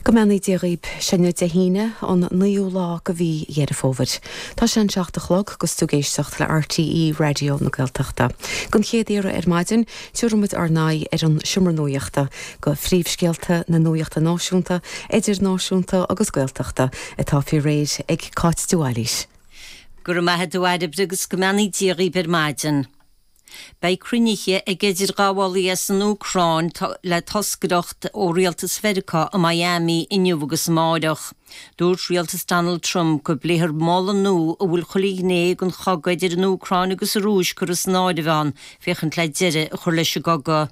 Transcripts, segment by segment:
Go mbeannaí Dia dhaoib. Seo í an Aoine Dé hAoine, an 9ú lá de mhí Dheireadh Fómhair. Tá sé an seacht a chlog 'gus tú ag éisteacht le RTÉ Raidió na Gaeltachta. Gon chéad iarraidh ar maidin, tabharfaidh muid ár n-aghaidh ar an Seomra Nuaíochta, do phríomhscéalta na nuaíochta náisiúnta, idirnáisiúnta agus Gaeltachta, atá faoi réir ag Cáit de Bhailís. Go raibh maith a'd a Bhairbre 'gus go mbeannaí Dia dhaoib ar maidin. Beidh cruinnithe ag idirghabhálaithe as an Úcráin le toscaireacht ó Rialtas Mheiriceá i Miami inniu agus amáireach. Dúirt Rialtas Donald Trump gur plean nua a bhfuil chuile ghné den chogadh idir an Úcráin agus an Rúis curtha san áireamh ann féachaint le deireadh a chur leis an gcogadh.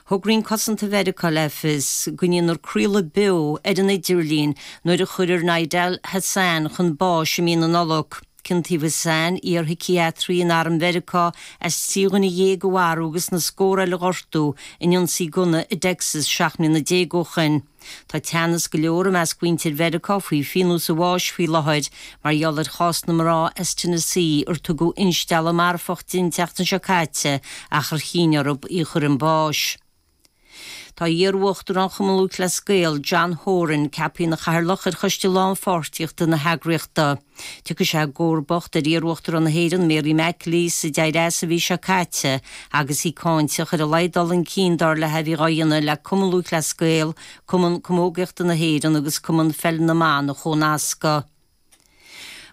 Thug Roinn Cosanta Mheiriceá le fios go ndéanfar craoladh beo ar an idirlíon nuair a chuirfear Nidal Hasan chun báis i mí na Nollag. Ciontaíodh Hasan, iarshiciatraí in Arm Mheiriceá, as trí dhuine dhéag a mharú agus na scórtha eile a ghortú in ionsaí gunna i dTexas seacht mbliana déag ó shoin. Tá teannas go leor i measc mhuintir Mheiriceá faoi phionós an bháis faoi láthair mar gheall ar chás na mná as Tennessee ar tugadh instealladh marfach di an tseachtain seo caite ach ar chinn orthu í a chur chun báis. Tá iar-uachtarán Chumann Lúthchleas Gael, John Horan, ceaptha ina Chathaoirleach ar choiste lánpháirtíochta na heagraíochta. Tiocfaidh sé i gcomharbacht ar iarUachtarán na hÉireann, Mary McAleese, a d'éirigh as an mhí seo caite agus í cáinteach ar a laghad dul chun cinn dar léi a bhí dhá dhéanamh le Cumann Lúthchleas Gael, Cumann Camógaíochta na hÉireann agus Cumann Pheil na mBan a chomhnascadh.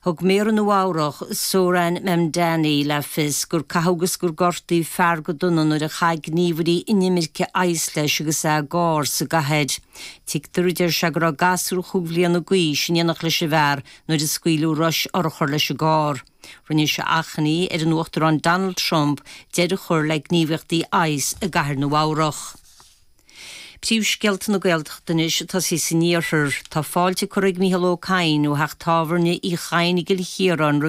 Thug Méara Nua-Eabhrac, Zohran Mamdani, le fios gur caitheadh agus gur gortaíodh fear go dona nuair a scaoil gníomhairí inimirce ICE leis agus é i gcarr sa gcathair. Tuigtear dó, a deir sé, go raibh gasúr chúig bhliana d'aois in éineacht leis an bhfear nuair a scaoileadh rois urchar leis an gcarr. Rinne sé achainí ar an Uachtarán Donald Trump deireadh a chur le gníomhaíochtaí ICE i gCathair Nua-Eabhrac. Príomhscéalta na Gaeltachta anois ag tosaí san Iarthar. Tá fáilte curtha ag Micheál Ó Cadhain ó theach tábhairne Uí Chadhain i gCill Chiaráin roimh an.